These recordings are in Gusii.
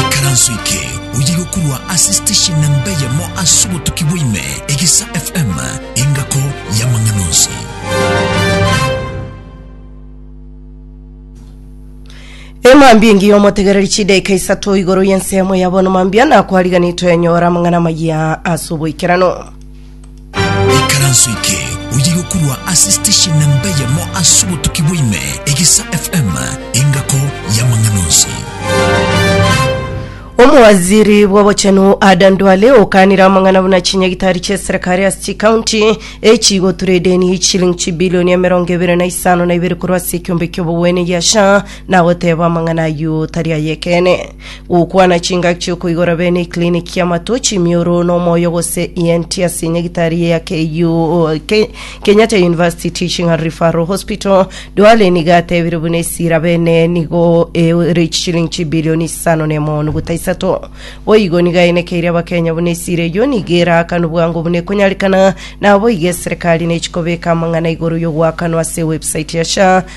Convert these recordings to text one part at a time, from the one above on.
Ikaranso eke oye gokorwa ase station na mbe yamo ase obotuki bwaime egisa FM engako y'amang'ana onsi. emambia engiya omotegereri chidaika isato igoro y'ensemo ya bono mambia nakwariganetwe nyora amang'ana maya ase oboikerano Ikaranso eke oye gokorwa ase station nemba eyemo ase obotuki bwaime, Egisa FM, engako y'amang'ana onsi. Omowaziri bw'obochenu Adan Duale okanire amang'ana buna chinyagitari chi'eserekari ase chikaunti echigotura edeni y'echilingi chibilioni emerongo ebere na isano na ibere korwa ase ekiombe ki'obogwene gia SHA na goteba amang'ana ayio tari ay'ekeene. Gokwana chingaki chiokoigora bene eclinic y'amato, chimioro na omoyo gose ENT ase nyagitari ya KU, Ke- Kenyatta University Teaching and Referral Hospital. Duale nigo atebire buna esira bene nigo ere chichilingi chibilioni isano na emo nuguta isato. Boigo nigo aenekeire abakenya buna esira eyio nigo eraakanwe bwango buna ekonyarekana, naboigo eserekari nechikobeka amang'ana igoro y'ogoakanwa ase ewebsite ya SHA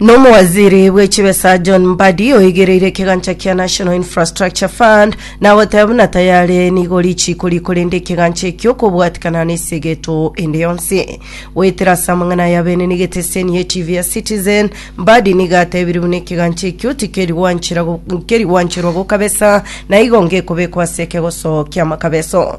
Nomowaziri bwe chibesa John Mbadi oigereire ekegancha kia National Infrastructure Fund na goteba buna tayare nigo richiko ri korenda ekegancha ekio kobwatikana na esegeto ende yonsi. Goetera ase amang'ana aya benene geteseni ye TV ya Citizen, Mbadi niga atebirie buna ekegancha ekio tikeri gwanchera go- keri gwancherwa gokabesa na igo ngekobekwa ase ekegoso kia makabeso.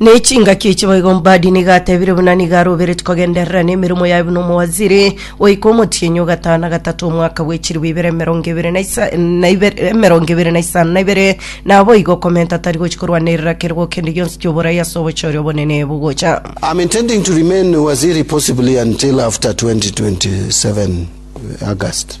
Ne chingaki echi boigo Mbadi nigo atebire buna nigo arobereti kogenderera na emeremo yaye buna omowaziri oika omotienyi ogatano na gatato omwaka bwechiribu ibere emerongo ebere na isa- na ibere- emerongo ebere na isano na ibere naboigo okomenta tari gochi korwana eriraka erigwo kende gionsi kioborai ase obochori obonene bogocha I'm intending to remain Waziri possibly until after 2027 August.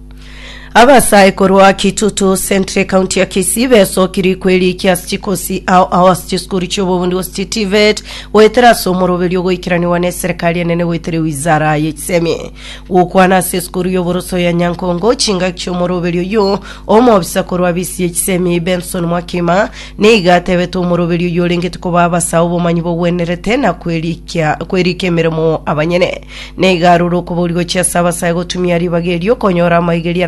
Abasae korwa Kitutu Centre County ya Kisii besokiri kwerikia ase chikosi ao ao ase chisukuru chi'obobundi gose chi TVET goetera ase omoroberio ogoikeraniwa ne eserikari enene goetera ewizara ye chisemi. Gokwana ase esukuru y'oboroso ya Nyankongo chingaki chi'omoroberio oyio, omobisa korwa abisi ye chisemi Benson Mwakima nigo atebete omoroberio oyio orengete koba abasae obomanyi bogwenerete na kwerikia kwerikia emeremo abanyene. Neiga aroro okoboria gochia ase abasae gotumia ribaga erio konyora amaigeria